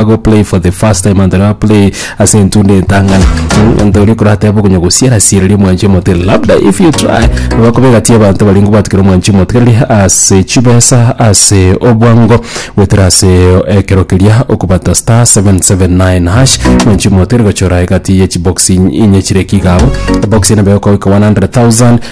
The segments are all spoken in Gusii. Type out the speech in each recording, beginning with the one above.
ago play for the first time and now play ase entunda entang'ani Mm, nto oria korateba okonya gosiera siereria mwanchi omote labda if you try bakobegatia abanto bari ngobatukira mwanchi omote keri ase chibesa ase obwango gwetera ase ekero keria okobata star 779 hash mwanchi omote rigochora egati ye chibox inye chire kigabo box ene begoka 100000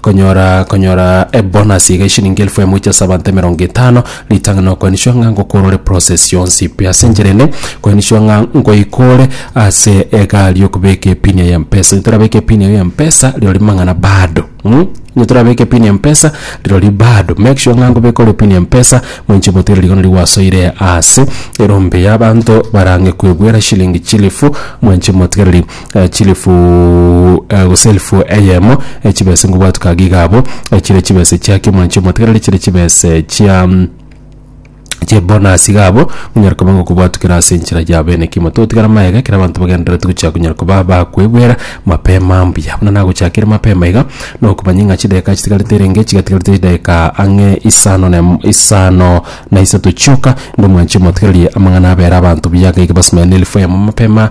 Konyora konyora ebonus iga eshilingi elfu emuche ase abanto emerongo etano ritang'ani okoenishwa ng'a ngokorore process yonsi pi ase enchera ende koenishwa ng'a ngoikore ase egari yokobeka epini eye ya mpesa ntorabeke epini eyo ya mpesa rirorio mang'ana bado mh ntorabeke epini ya mpesa rirorio bado make sure ng'a nkobeka ore epini ya mpesa moinche botere rigoro nario gwasoire ase erombe yabanto barang'e koebuera shilingi chilifu moinche motigereri. chilifu, eh, gose elifu eyemo eh, chibese ngobwatu kagiga abo eh, chire chibese chia kiomwanchi omotegereri chire chibese chia mm, chebonasi gabo onyara koba ngokobwatukera ase enchera ya bene kimo totigara maega ekero abanto bagendererete gochia konyara koba bakwegwera mapema mbuya buna nagochakire mapema iga nokomanya ng'a chidakika chitigarete erenge chigatigarete chidakika ang'e isano na em- isano na isato chioka inde omwanchi omotegereri amang'ana abere abanto buya iga iga basimera na elifu eyemo mapema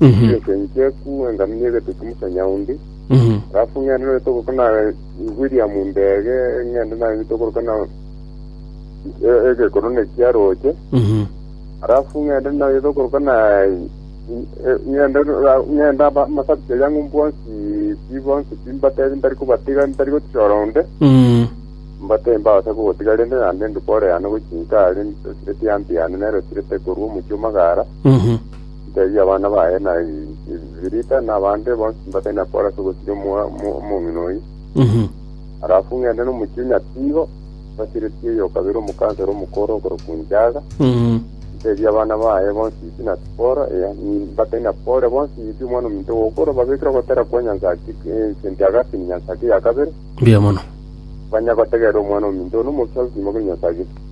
Ase ense encheku enganu ni'egete ki'omosaini ondi. Alafu ng'ende nonya togoka na William Ndege, ng'ende naye tokoroka na e- egekorone kia Roche. Alafu ng'ende naye tokoroka na e- ng'ende ra- ng'ende aba- amasabiti aria ng'u bonsi pi bonsi pi mbatebe ntari kobatiga ntari gotiora onde. Mbatebe mbabase kogotiga rende naende ndikore yane gochia inse aria esireti y'anty yane nero esirete korwa omochie o Magara. Ntebia abana baye na Evirita na abande bonsi mbatari na koora ase ogosiria omong'ina oyio. Arafu ng'ende nomochie Nyatigo, mbasireti oyo o kabere omokansela omokoro okorokwa Njaga, ntebie abana baye bonsi Isi na Sipora, ee, mbatari na Pore bonsi Isi omwana ominto gw'okoro, babekire ogotera kwa Nyansaki St. Augustine Nyansaki ya kabere, mbuya mono. banye gotegerera omwana ominto one omosio agokima korwa Nyansaki.